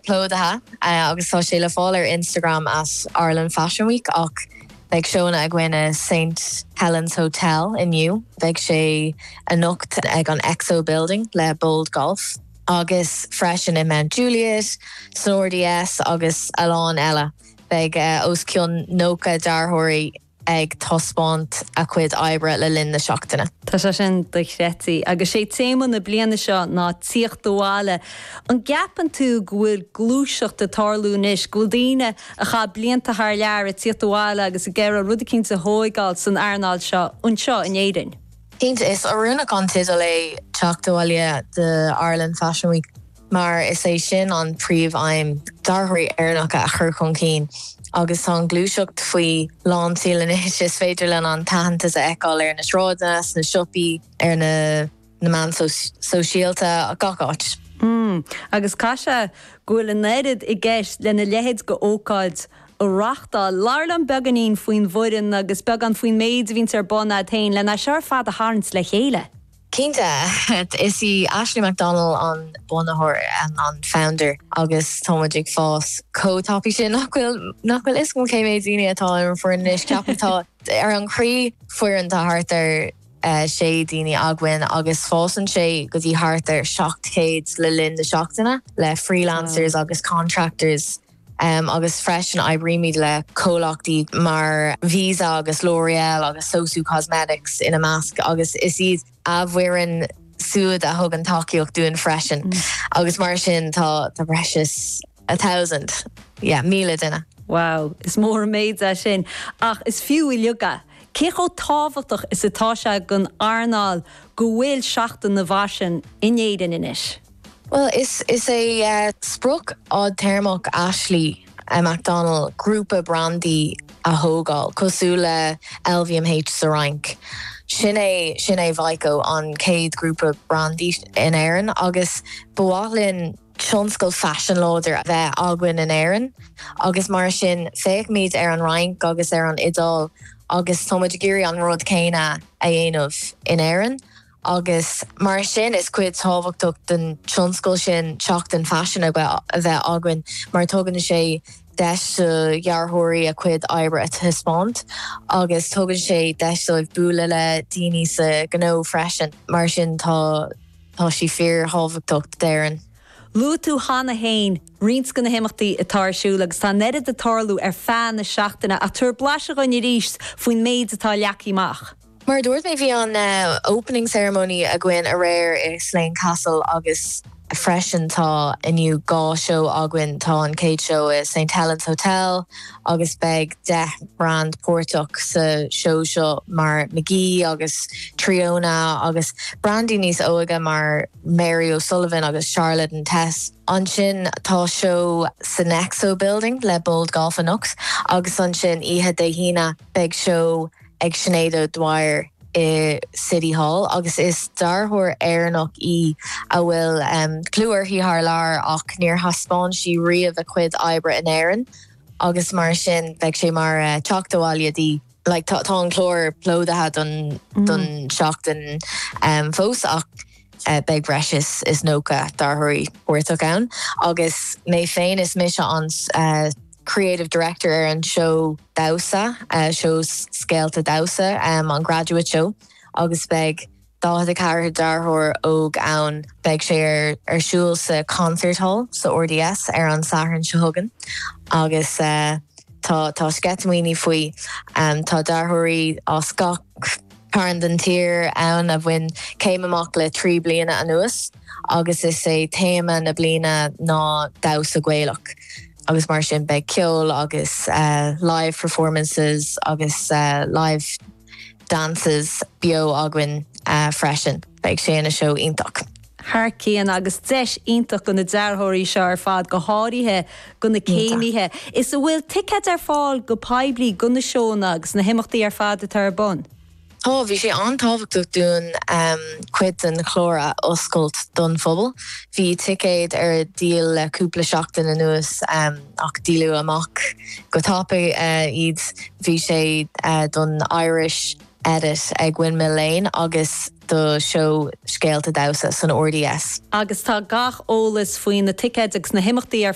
plódaithe agus tá sé le fáil ar Instagram as Ireland Fashion Week ach beidh seónna againn i St Helen's Hotel inniu, beidh sé anocht ag an Exo Building le Bold Golf agus freisin i Mount Juliet, san RDS agus a lán eile. Beidh os cionn 90 dearthóirí ag taispeáint a cuid oibre le linn na seachtaine. Tá sé sin dochreidte. Agus sé téama na bliana seo ná tíocht abhaile. An gceapann tú go bhfuil gluaiseacht ag tarlú anois, go bhfuil daoine a chaith blianta thar lear ag tíocht abhaile agus ag iarraidh rud eicínt a thóigeáil san earnáil seo anseo in Éirinn? Cinnte, is oiriúnach an teideal é Teacht Abhaile do Ireland Fashion Week. mar is é sin an príomh-aidhm dearthóirí Éireannacha a chur chun cinn, agus tá an ghluaiseacht faoi lánseol anois, is féidir linn an t-aitheantas a fheiceáil ar na sráideanna, sna siopaí, ar na na meán sóisialta, gach áit. Mmm, agus caithfidh sé go bhfuil an oiread i gceist lena leithéid dh'ócáid a reáchtáil. Labhair linn beagáinín faoin bhfoireann agus beagán faoin méid a bhíonns ar bun a'd féin lena seo ar fad a tharraingt le chéile. Cinnte, is í Ashley McDonnell an bunaitheoir, an an founder, agus tá muid ag fás chomh tapaidh sin nach bhfuil nach bhfuil fhios agam cé mhéid daoine atá ar an foireann anois. Ceapaim tá ar an croí foireann tá thart ar sé daoine againn agus fásann sé go dtí thart ar 700 le linn na seachtaine le freelancers agus contractors. agus freisin oibrímid le comhlachtaí mar Visa agus L'Oreal agus SOSU Cosmetics ina measc, agus is iad a bhfoireann siúd a thugann tacaíocht dúinn freisin, agus mar sin tá tá breis is a thousand, yeah, míle duine. Wow, is mór an méid é sin, ach is fiú uilig é. Cé chomh tábhachtach is atá sé don earnáil go bhfuil seachtain mar seo in Éirinn anois? Bhuel, is é sprioc fhadtéarmach Ashley McDonnell grúpa brandaí a thógáil, cosúil le LVMH sa Fhrainc. Sin é, sin é VYKO, an chéad ghrúpa brandaí in Éirinn agus ba mhaith linn tionscal faisin láidir a bheith againn in Éirinn agus mar sin féachaimid ar an Fhrainc agus ar an Iodáil agus táimid ag iarraidh an rud céanna a dhéanamh in Éirinn. agus mar sin is cuid thábhachtach den tionscal sin seachtain faisin a bheith againn mar tugann sé deis do dhearthóirí a cuid oibre a thaispeáint agus tugann sé deis dóibh bualadh le daoine sa ghnó freisin, mar sin tá tá sí fíor thábhachtach d'Éirinn. Luaigh tú cheana féin roinnt de na himeachtaí atá ar siúl agus tá an oiread ag tarlú ar feadh na seachtaine ach tabhair blaiseadh dhuinn arís faoin méid atá leagtha amach. Mar a dúirt mé, bhí an opening ceremony againn aréir i Slane Castle agus freisin tá inniu dhá seó againn, tá an chéad seó i Saint Helen's Hotel agus beidh deich mbrand páirteach sa seó seo mar Magee agus Tríona agus brandaí níos óige mar Mary O'Sullivan agus Charlotte and Tess. Ansin tá seó san Exo Building le Bold Golf anocht agus ansin oíche Dé hAoine beidh seó. ag Sinéad O'Dwyer i City Hall agus is dearthóir Éireannach í a bhfuil clú uirthi thar lear ach níor thaispeáin sí riamh a cuid oibre in Éirinn agus mar sin beidh sé mar teacht abhaile di, like. Tá an clár plódaithe don tseachtain fós ach beidh breis is 90 dearthóirí páirteach ann agus mé féin is mise an creative director ar an seó damhsa, so Scéalta damhsa, an Graduate Show, agus beidh 44 dearthóir óg ann. Beidh sé ar siúl sa Concert Hall sa RDS ar an Satharn seo chugainn agus tá sceitimíní faoi. Tá dearthóirí as gach. cearn den tír ann a bhain céim amach le trí bliana anuas agus is é téama na bliana ná damhsa Gaelach agus mar sin beidh ceol agus live performances agus live dances beo againn freisin. Beidh sé ina seó iontach. thar cionn agus deis iontach do na dearthóirí seo ar fad, go háirithe do na céimithe, is an bhfuil ticéid ar fáil go poiblí do na seónna agus na himeachtaí ar fad atá ar bun. Tá. Bhí sé an-tábhachtach dúinn cuid den chlár a oscailt don phobal. Bhí ticéid ar díol le cúpla seachtain anuas ach díoladh amach go tapaidh iad. Bhí sé don Irish Edit ag Windmill Lane agus. do sheó scéalta damhsa san RDS. agus tá gach eolas faoi na ticéid agus na himeachtaí ar.